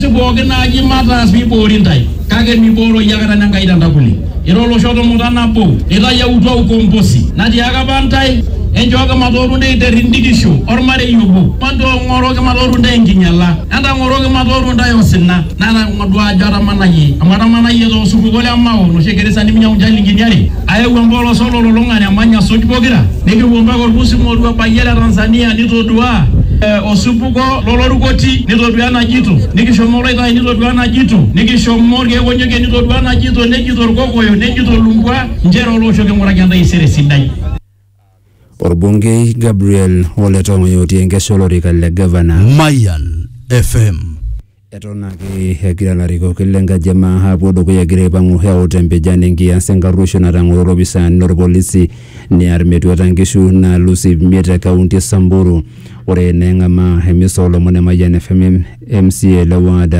Ntaas pooki naaji mataas pee iboori intae, kake mibooro iyie aikata Enkai te ntakuli. Ira olosho tumuta nabo, itayautua ukombosi. Natiaaka apa intae, Enchooki matooru intae te rrindikisho olmarei obo, matoong'oroki matooru intae enkinyala, entang'oroki matooru intae osina. Natodua ajo atamanayie, amu atamanayie too supuko le Mao, noshi egira isaanini meinyiang'u inchilingini are. Ayau empolos ololulung'ata emany asuj pokira, nikipuo mpaka olpusi ng'oru ebayie le Tanzania nitoduaa eh, osupuko lolorukoti nitoduaa enajito, nikishomo oloitai nitoduaa enajito, nikishomo ilkeek onyokie nitoduaa enajito, nejito ilkokoyo, nejito ilumbwa nchere oloosho king'uraki entaisere sidai. Orbungei Gabriel Ole Tong'oyo otii enkesha olorika le gavana. Mayan FM. Eton ake egira larikok le nkaji e maa apuo dukuya egira aipang'u eut empijan enkias enkarruoisho natang'oro lopisaani lorpolisi near metuata nkishu naalus iip miet te kaunti e Samburu. Ore neeng'amaa emisa oolomon e Mayian FM MCA le ward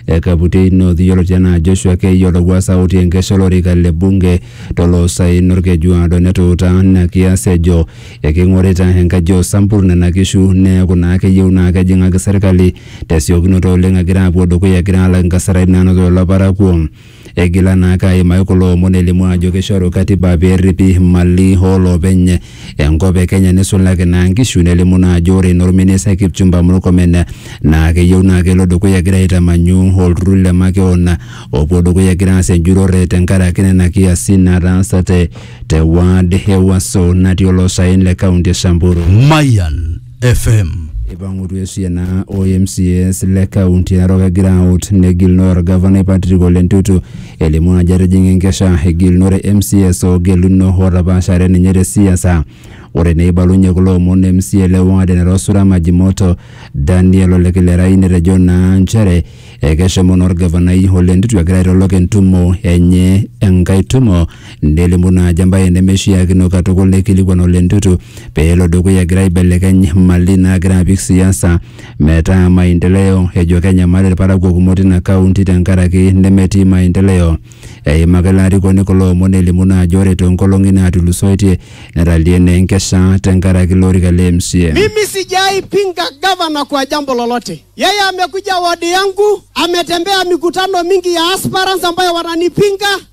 e Kaputiei North yioloti anaa Joshua Keiyo Lowuasa otii enkesha olorika le bunge to loosaen olkeju aado netuuta ina kias ejo eking'orita enkaji o Sampur nena kishu neeku naa keyieu naa kejing'aki serkali tesiokinoto oleng egira apuo dukuya egira alak inkasarani naanoto lelo parakuo. Eigila naake aimaki kulo omon elimu ajo keishoru katiba pee erripi imali oo loopeny enkop e Kenya nisulaki naa nkishu nelimu naa ajo ore naa olministai Kipchumba Murkomen naa keyieu naa kelo dukuya egira aitamanyu olturrur le makeon opuo dukuya egira aas enjurrore tenkaraki nena kiasin nataasate te ward e Waso natii oloosaen le kaunti e Samburu. Mayan FM. Eipangutua esiana o MCAs le kaunti Narok egira aut negilunore orgavanai Patrick Ole Ntutu elimu ajo etijinga enkesha egilunore MCAs oogeluno ootapaashare ninye te siasa. Ore neibalunye kulo omon MCA le ward e Narosura Majimoto Daniel Ole Kilerai netejo naa nchere ekeshomo naa orgavanai Ole Ntutu egira aitolok entumo enye enkae tumo nelimu naa ajo embaye nemeishiakino katukul neikilikuan Ole Ntutu pee elo dukuya egira aibelekeny mali naagira apik siasa metaa maendeleo ejo kenyamal ilparakuo kumok tina kaunti tenkaraki nemetii maendeleo. Eimaka ilo arikoni kulo omon elimu naa ajo ore too nkolong'i naatulusoitie netalie naa enkesha tenkaraki ilo orika le MCA. Mimi sijai pinga gavana kwa jambo lolote. Yeye amekuja wadi yangu, ametembea mikutano mingi ya aspirants ambayo wananipinga.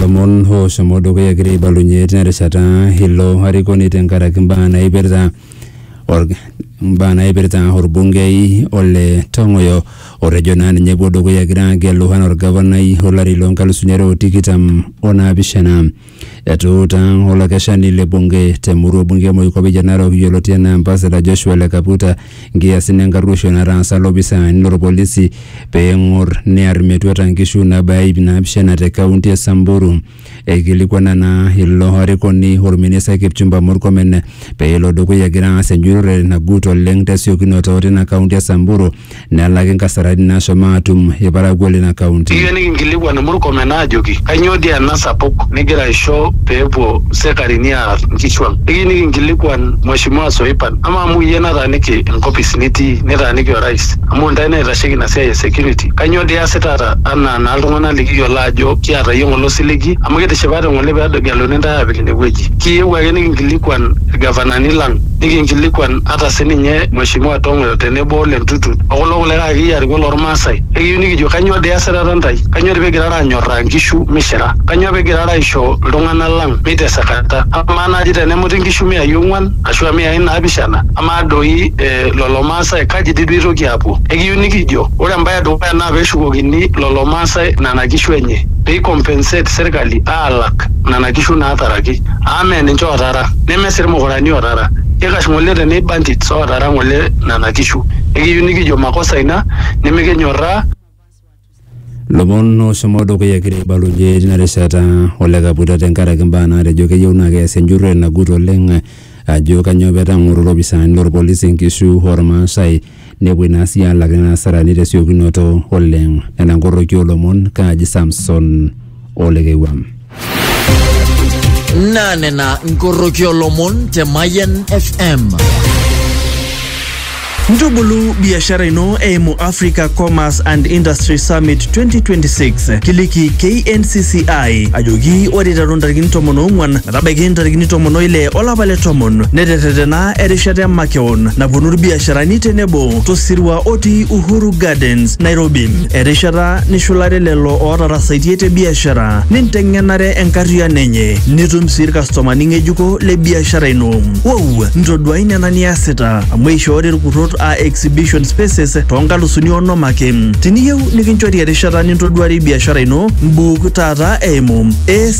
lomon oshomo dukuya egira aibalunye tina rishata ilo arikoni tenkaraki mbaa naipirta or- mbaa naipirta orbungei ole Tong'oyo otejo naa ninye epuo dukuya egira agelu anaa orgavanai olari loo nkalusuni are o tikitam o naapishana. Etuuta olakeshani le bunge te murua bunge e Moikope e Narok yioloti anaa Ambassador Joshua Ole Kaputa nkiasin enkarruoisho nataasa lopisaani lorpolisi pee eng'or near metuata nkishu naabaya iip naapishana te kaunti e Samburu. Eikilikuana naa ilo arikoni olministai Kipchumba Murkomen pee elo dukuya egira aas enjurore nagut oleng tesiokinoto tina kaunti e Samburu nelaki nkasarani naashomo aatum ilparakuo leina kaunti. Ekiyieu nikinkilikuan Murkomen aajoki kainyoo dii ena sapuk nigira aisho pee epuo sekarini aar nkishu ang. Ekiyieu nikinkilikuan Mweshimiwa Soipan amaa amu iyie nataaniki enkopis nitii nitaaniki Orais amu intae naitasheki ina siai e security kainyoo dii iasitata anaa naa iltung'ana likiyiolo aajo kiata iyie ng'ole osiligi amu kitishipate ng'ole pee egeluni intae aapik ine wueji. Kiyieu ake nikinkilikuan ilgavanani lang. nikinkilikuan ata sininye Mheshimiwa Tong'oyo tenebo Ole Ntutu o kulo kulikae akeyie arikok lormaasai. Ekiyieu nikijo kanyoo dii esirata ntae? Kanyoo dii pigirara anyorraa nkishu mishira? Kanyoo pigirara aisho iltung'ana lang meitesekata? Amaa naaji tenemuti nkishu miai ong'uan ashu a miai naapishana amaa doi lolo maasai kaji dii duo eitoki aapuo? Ekiyieu nikijo ore embae e dukuya naa peshukokini lolo maasai nena kishu enye. Pei compensate serkali aalak nena kishu naataraki. Amu mee ninche ootaara. ootara, nemesir ilmukurani ootara, keikash ng'ole te nei bandits ootara ng'ole nena kishu. Nikiyieu nikijo makosa ina nimikinyorraa. Lomon ooshomo dukuya egira aibalunye tina rishata Ole Kabuta tenkaraki mbaa naatejo keyieu naa keasi enjurrore nagut oleng ajo kanyoo pee etang'oro lopisaani lolpolisi nkishu olmaasai Nepuoi naa sii aalak nena asarani te siokinoto oleng. Nena nkoroki oo lomon, Kaji Samson o Lekewua. Naa nena nkoroki oo lomon te Mayian FM. Ntubulu biashara ino eimu Africa Commerce and Industry Summit 2026. Kiliki KNCCI ajoki ore iteru ntarikini tomon oong'uan metabaiki ntarikini tomon oile olapa le tomon neterretena erishata emakeon naponu irbiasharani tenebo tosirua otii Uhuru Gardens, Nairobi. Erishata nishulare lelo ootarasaitie te biashara ninteng'enare enkarriyiano enye nitum sii irkastomani ng'ejuko le biashara ino. Wow! Ntoduai nena niasita amu eishoori irkurrot aa exhibition spaces too nkalusuni onom ake. Tiniyieu nikinchori erishata nintoduarie biashara ino, mbuuk taata eimu AS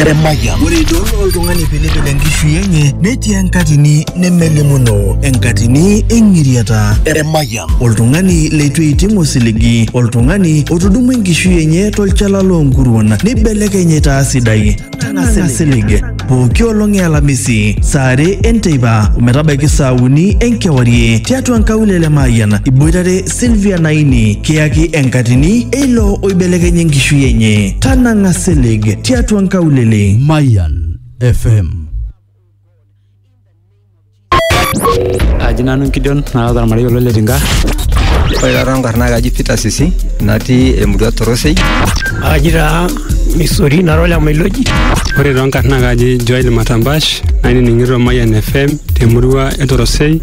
Eremaya. Ore idol oltung'ani pilipil enkishui enye netii enkatini nemelimuno, enkatini eng'iriata. Eremaya. Oltung'ani leitu eiting osiligi, oltung'ani otudumua enkishui enye tolchala loonkuruon neibelekeny aitaa sidai. Nang'a silig. Pooki olong e Alamisi, saa are enteipa ometabaiki saa uni enkewarie tiatua nkaulele e Mayian iboitare Sylvia Naini kiyaki enkatini eilo oibelekenya enkishui enye. Tanang'a silig tiatua nkaulele. Mayan FM. aji nanu nkidion naata ormarei olo le tinga Ore taata enkarna kaji Peter Sisi natii emurua Torosei. Aji taa Misori nara ole Mailoji. ore too nkarna kaji joel matambash nainining'ito mayan fm temurua e torosei